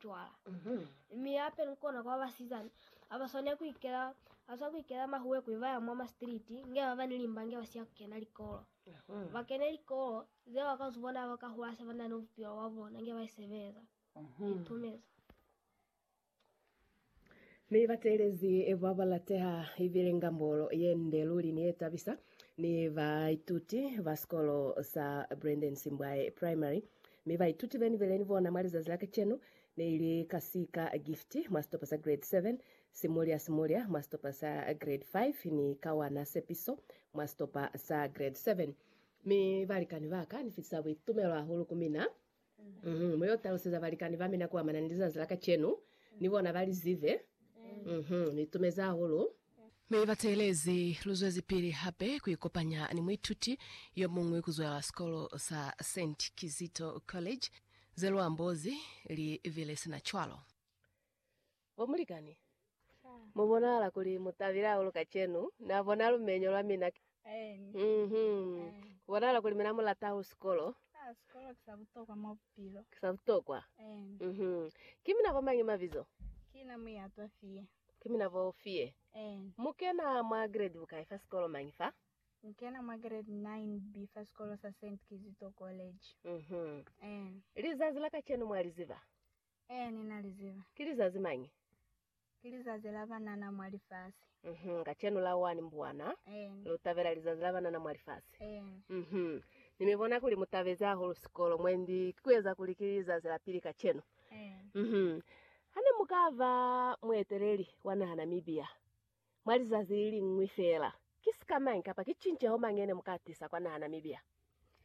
cwala. Mi hape ni kona kuba basizana abaswanela kuikela abaswana kuikela mahuwe kuli baya mwa mastriti nge baba ni limba nge basiya kukena likolo. Bakene likolo ze bakazibona abakahula se banani bupilo bwa bona nge baisebeza. Itumeza. Ni batelezi babalateha ibile ngambolo yende luli ni yetabisa ni baituti ba sikolo sa Brandon Simbwaye Primary. Mi baituti beni bele ni bona mwa lizazi la kacenu ne ili kasika Gift mwa situpa sa Grade 7, Simulya Simulya mwa situpa sa Grade 5 ni Kawana Sepiso mwa situpa sa Grade 7. Mi balikani ba ka ni fitisa buitumelo hahulu ku mina. Uhmm. Mu yo taluseza balikani ba mina kuamana ni lizazi la kacenu, ni bona ba li zibe. Uhmm. Ni itumezi hahulu. Mi ba teelezi luzwezipili hape ku ikopanya ni muituti yo muñwi ku zwela sikolo sa Saint Kizito College, ze lu ambozi li bile sina cwalo. Bo mulikani, mu bonahala kuli mu tabile hahulu kacenu. Na bona lumenyo lwa mina ke? Uhum. Ku bonahala kuli mina mu lata hahulu sikolo. Ah, sikolo ki sa butokwa mwa bupilo. Ki sa butokwa? Uhum. Ki mina ba mañi mabizo? Ki na Muyatwa Fie. Ki mina bo Fie. Ee. Mu kena mwa grade bukai fa sikolo mañi fa? Mu kena mwa grade 9 B fa sikolo sa Saint Kizito College. Mhm. Ee. Lizazi la kacenu mwa li ziba? Ee, ni na li ziba. Ki lizazi mañi? Ki lizazi la banana mwa lifasi. Mhm. Kacenu la 1 Mbwana, Ee. lu tabela lizazi la banana mwa lifasi. Ee. Mhm. Ni mi bona kuli mu tabezi hahulu sikolo mwendi ki ku eza kuli ki lizazi la pili kacenu. Uhum. Hane mukaba mueteleli wa naha Namibia mwa lizazi liliñwi feela, ki sika mañi kapa ki cinceho mañi yene muka tisa kwa naha Namibia,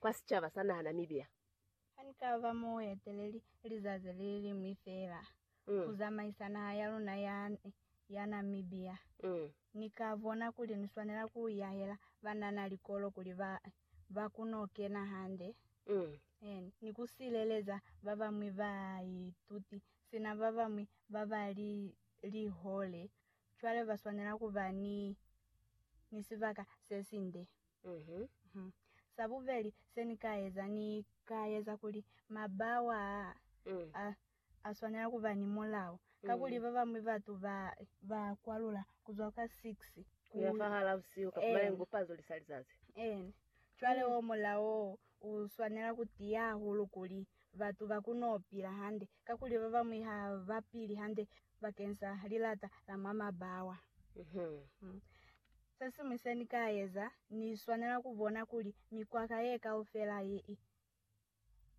kwa sicaba sa naha Namibia? Hanikaba mueteleli lizazi liliñwi feela ku zamaisa naha ya luna ya ya Namibia, Ni ka bona kuli ni swanela ku yahela banana likolo kuli ba ba ku no kena hande ni ku sileleza ba bañwi baituti sina ba bañwi ba ba li lihole, cwale ba swanela ku ba ni ni sibaka se sinde. Sa bubeli se ni ka eza, ni ka eza kuli mabawa a, a a swanela ku ba ni mulao, kakuli ba bañwi batu ba ba kwalula ku zwa kwa 6 ku ya fahal'a busihu ka kuma lingu pa zuli sa lizazi. Eena, cwale wo mulao wo u swanela ku tiya hahulu kuli batu ba ku no pila hande, kakuli ba bañwi ha ba pili hande bakeng sa lilata la mwa mabawa. Mm. Se siñwi se ni ka eza, ni swanela ku bona kuli mikwaka ye kaufela ye i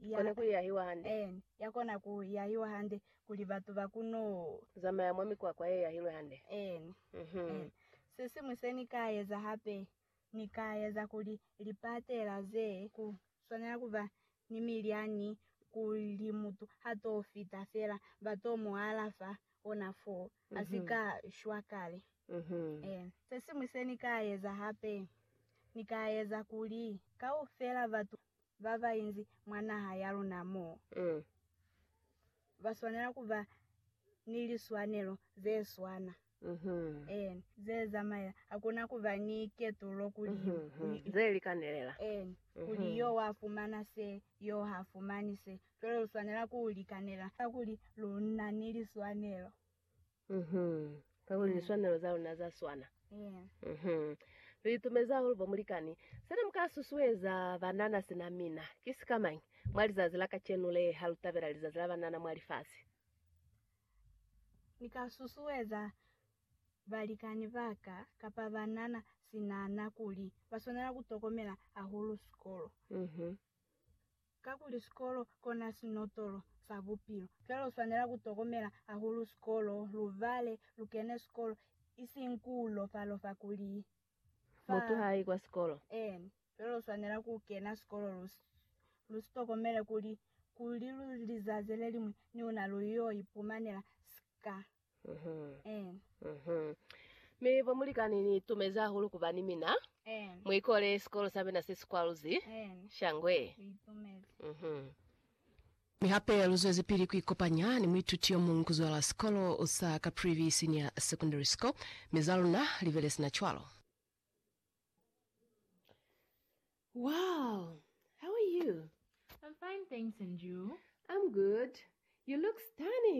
ya, Kona ku yahiwa hande. en, ya kona ku yahiwa hande kuli batu ba kuno. Zamaya mwa mikwakwa ye yahilwe hande. en, Mhm. en. Se siñwi se ni ka eza hape, ni ka eza kuli lipatela ze ku swanela ku ba ni milyani kuli mutu ha t'o fita fela ba t'o mu alafa ona foo. A si ka shwa kale. Ee, se siñwi se ni ka eza hape, ni ka eza kuli kaufela batu ba ba inzi mwa naha ya luna mo, ba swanela ku ba ni liswanelo ze swana, ee, ze zamaela, hakuna ku ba ni ketulo kuli yo, ee, kuli yo wa fumana se, yo ha fumani se, Luna lu swanela ku li kanela, kakuli lu na ni liswanelo. Uhum. Kakuli liswanelo za luna za swana. Yeah. Uhum. Lu itumezi hahulu bo mulikani. Se ne mu ka susueza banana sina mina, ki sikamañi, mwa lizazi la kacenu le, ha lu tabela Lizazi la Banana mwa Lifasi? Ni ka susueza balikani ba ka kapa banana sinana kuli ba swanela ku tokomela hahulu sikolo. Uhum. Kakuli sikolo kona sinotolo sa bupilo, cwale uswanela kutokomela hahulu sikolo, lubale lukene sikolo, ising kuulofalofa kuli fa. Mutu haayi kwa sikolo. Eena. Cwale uswanela kukena sikolo lu, lu sitokomele kuli, kuli lu, lizazi leliñwi niuna lu yo ipumanela sika. Mi bo mulikani ni tumezi hahulu kuba ni mina mu ikole sikolo sa mina se si kwaluzi shangwe. Mi hape lu zwezipili ku ikopanya ni muituti yo muñwi ku zwala sikolo sa Caprivi Senior Secondary School, mi za luna li bile sina cwalo. Wow! How are you? I'm fine thanks and you? I'm good. You look stunning!